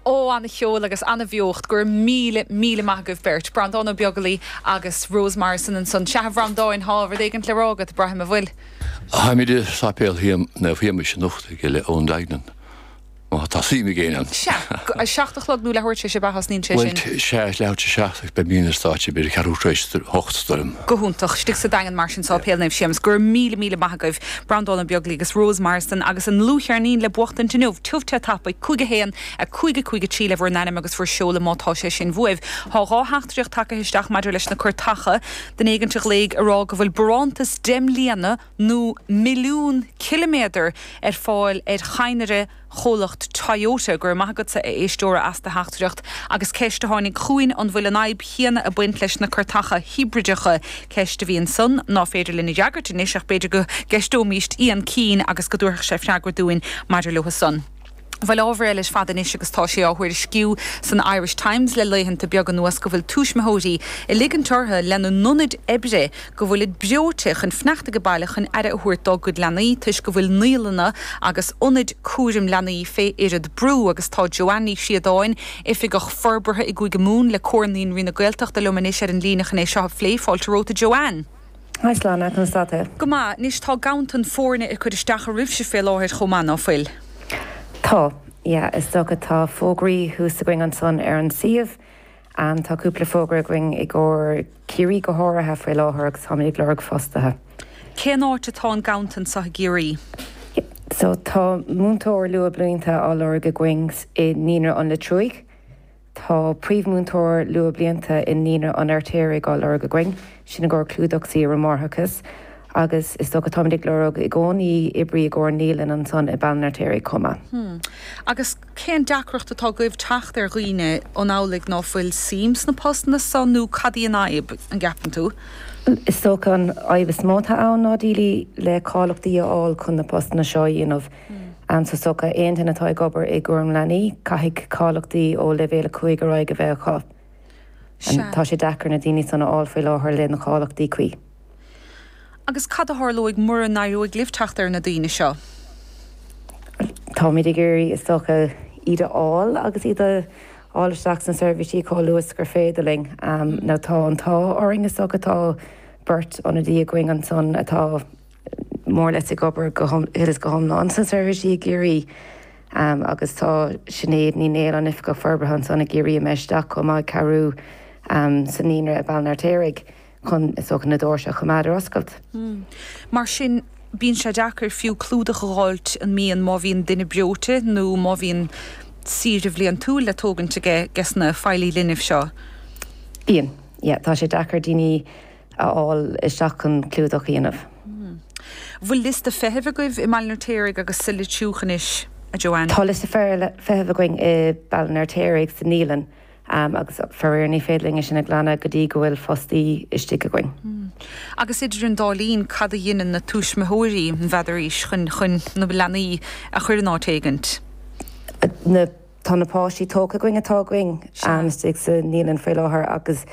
Ó, an-cheol agus an-bheocht, go raibh míle, míle maith agaibh beirt. Breandán Ó Beaglaoich agus Rose Morrison ansan. Sea, a Bhreandáin, thá rud éigint le rá agat, braithim, a' bhfuil? Táimid i Sáipéal Naomh Shéamuis anocht ag le Eoin Duignan, má tá suim ag éinne ann. Sea, a seacht a chlog nó leath uair tar éis a thosnaíonn sé sin? Bhuel, sea, leath uair tar éis a' seacht, ach beimidne ar stáitse ag b'fhéidir ceathrú tar éis a hocht, dar liom. Go hiontach, istigh sa Daingean mar sin, Sáipéal Naomh Séamus. Go raibh míle, míle maith agaibh. Breandán Ó Beaglaoich agus Rose Morrison agus a ndlúthcheirnín le buachtaint inniu. Tiubh te tapaidh, 5 1, 5 5 3 le bhur n-ainm agus bhur seoladh má tá sé sin bhuaibh. Tá dhá theachtaireacht tagtha isteach maidir leis na cairteacha, duine éigint a ghlaoigh a rá go bhfuil barántas deich mbliana nó milliún ciliméadar ar fáil ar chadhnra, chomhlacht Toyota. Go raibh maith agatsa, a éisteora, as do theachtaireacht. Agus ceist a tháinig chugainn, an bhfuil an fhadhb chéanna ag baint leis na cairteacha hibrideacha? Ceist a bhí ansan ná féidir linn a fhreagairt anois, ach b'fhéidir go gceisteoimíst Ian Keane agus go dtabharfadh sé freagra dúinn maidir leothu san. Bhuel, ábhar eile ar fad anois agus tá sé á thuairisciú san Irish Times le laethanta beaga anuas go bhfuil tuismitheoirí ag ligint orthu lena n-ionaid oibre go bhfuilid breoite chun fanacht age baile chun aire a thabhairt dá gcuid leanaí toisc go bhfuil naíolanna agus ionaid cúraim leanaí fé oiread brú agus tá Joanne Ní Chríodáin, Oifigeach Forbartha i gCúige Mumhan le Comhar Naíonraí na Gaeltachta liom anois ar an líne chun é seo a phlé. Fáilte romhat a Joanne. Haigh, Sláine, conas tá tú? Go maith, anois tá ganntan foirne ag cur isteach oraibhse fé láthair chomh maith, ná fuil? Tá, yeah, is dócha, tá fógraí thuas againn ansan ar an suíomh, ann. Tá cúpla fógra againn i gcomhair Ciarraí go háirithe faoi láthair agus táimid ag lorg fostaithe. Cén áit atá an ganntan so i gCiarraí? So, tá múinteoir luathbhlianta á lorg againn i Naíonra an Leitriúigh. Tá príomh-mhúinteoir luathbhlianta i Naíonra an Fheirtéaraigh á lorg againn. Sin i gcomhair clúdach saoire mháithreachais, agus is dócha táimid ag lorg i gcónaí oibrí i gcomhair naíolann ansan i mBaile an Fheirtéaraigh chomh maith. Hmm. Agus cén deacracht atá agaibh teacht ar dhaoine? An amhlaidh ná fuil suim sna postanna san nó cad í an fhadhb, an gceapann tú? Bhuel, is dócha an fhadhb is mó atá ann ná daoine le cáiliochtaí a fháil chun na postanna seo a dhéanamh. Hmm. Is dócha aon duine atá ag obair i gcúram leanaí, caithfidh cáiliochtaí ó leibhéal a cúig ar aghaidh a bheith acu. Sea. Tá sé deacair na daoine san a fháil faoi láthair le na cáiliochtaí cuí. Agus cad a tharlóidh mura n-éireoidh libh teacht ar na daoine seo? Táimid ag iarraidh, is dócha, iad a fháil agus iad a fháil isteach sna seirbhísí chomh luath is gur féidir linn. Now, tá an t-ádh orainn, is dócha. Tá beirt ionadaí againn ansan atá. mór leis ag obair thíos go hiomlán sna seirbhísí i gCiarraí agus tá Sinéad Ní Néill, an Oifigeach Forbartha ansan i gCiarraí, imithe isteach chomh maith ag cabhrú sa naíonra i Baile an Fheirtéaraigh chun, is dócha, na doirse a choimeád ar oscailt. Mar sin, bíonn sé deacair fiú clúdach a dh'fháilt an mbíonn má bhíonn duine breoite nó má bhíonn saoire bhliantúil le tógaint aiges na feighlithe linbh seo. Bíonn. Yeah, tá sé deacair daoine. a fháil isteach chun clúdach a dhéanamh. Bhfuil liosta feithimh agaibh i mBaile an Fheirtéaraigh agus sa Leitriúch anois, a Joanne? Tá liosta feithimh againn i Baile an Fheirtéaraigh, sa naíolann, agus faraor ní féidir linn é sin a ghlanadh go dtí go bhfuil fostaí istigh againn. Agus idir an dá linn, cad a dheineann na tuaismitheoirí, an bhfeadaraís, chun na leanaí a chuir in áit éigint? Tá na páistí tógtha againn atá againn istigh sa naíolann faoi láthair agus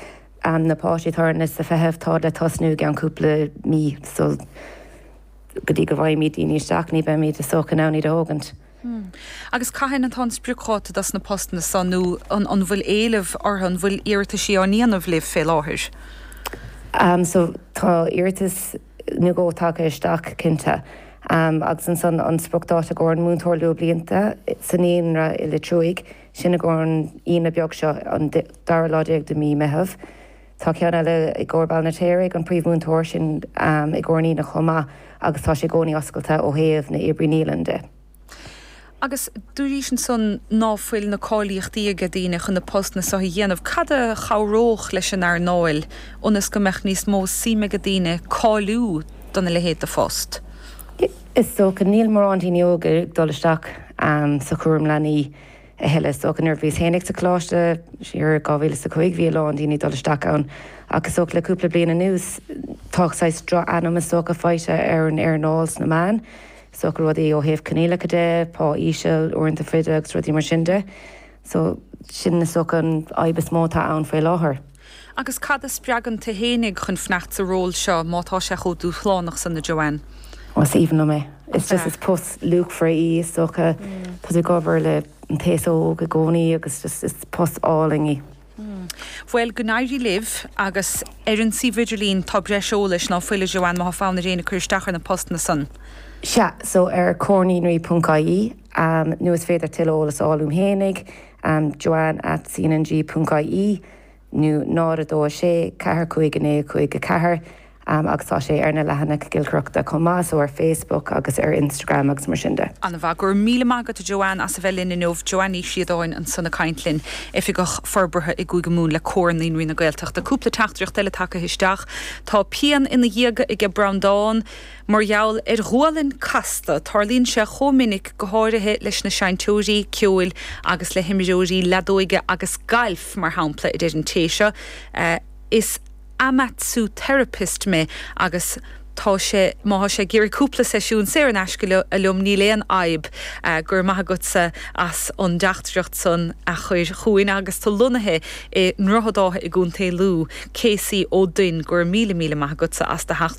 Am na páistí atá ar an liosta feithimh tá le tosnú i gceann cúpla mí so go dtí go bhfaighimid daoine isteach, ní bheimid is dócha in ann iad a thógaint. Agus cathain atá an spriocdháta dos na postanna so nó an bhfuil éileamh orthu, an bhfuil iarrataisí á ndéanamh libh fé láthair? So tá iarratas nó dhó tagtha isteach cinnte. Agus ansan an spriocdháta i gcomhair an múinteoir luathbhlianta sa naíonra i Leitriúigh, sin i gcomhair an Aoine beag seo, an dara lá déag de mí Meitheamh. Tá ceann eile i gcomhair Baile an Fheirtéaraigh, an príomhmhúinteoir sin i gcomhair an Aoine chomh maith agus tá sé i gcónaí oscailte ó thaobh na oibrí naíolann de. Agus dúraís ansan ná fuil na cáilíochtaí aige daoine chun na postanna so a dhéanamh. Cad a chabhródh leis an earnáil ionas go mbeadh níos mó suim aige daoine cáiliú dona leithéid de phost? Is dócha, níl mórán daoine óga ag dul isteach sa chúram leanaí a thuilleadh. Is dócha, nuair a bhíos féinig sa choláiste, siar i 2000 is a cúig, bhí a lán daoine ag dul isteach ann. Ach is dócha le cúpla bliain anuas, tá saghas droch-ainm is dócha faighte ar an earnáil sna meáin. Is dócha rudaí ó thaobh coinníollacha de, pá íseal, uaireanta fada agus rudaí mar sin de. So, sin is dócha an fhadhb is mó atá ann faoi láthair. Agus cad a spreagann tu fhéinig chun fanacht sa ról seo, má tá sé chomh dúshlánach san, a Joanne? Ó, is aoibhinn liom é. Is just, is post luachmhar í, is dócha. Tá tú ag obair le an t-aos óg i gcónaí agus just, is post álainn í. Bhuel, go n-éirí libh, agus ar an suíomh idirlín tá breis eolais ná fuil, a Joanne, má tá fonn ar éinne cur isteach ar na postanna san? Sea, so ar comharnaionrai.ie, nó is féidir tuilleadh eolas a fháil uaim fhéinig, Am joanne at cnng.ie nó 0 2 6 4 5 9 5 4 Am agus tá sé ar na leathanaigh giolcaireachta chomh maith, so ar Facebook agus ar Instagram agus mar sin de. An-mhaith. Go raibh míle maith agat, a Joanne, as a bheith linn inniu. Joanne Ní Chríodáin ansan ag caint linn, Oifigeach Forbartha i gCúige Mumhan le Comhar Naíonraí na Gaeltachta. Cúpla teachtaireacht eile tagtha isteach. Tá pian ina dhiaidh aige Breandán. Mar gheall ar ghualainn casta, tarlaíonn sé chomh minic, go háirithe leis na seinnteoirí ceoil agus le himreoirí leadóige agus gailf, mar shampla, a deir an té seo, Is amatsu-therapist mé agus tá sé, má tá sé ag iarraidh cúpla seisiún saor in aisce liom, níl aon fhadhb. Go raibh maith agatsa as an dteachtaireacht san a chuir chugainn agus tú lonnaithe i nDroichead Átha i gContae Lú, Casey Ó Duinn, go raibh míle míle maith agatsa as do theachtaireacht.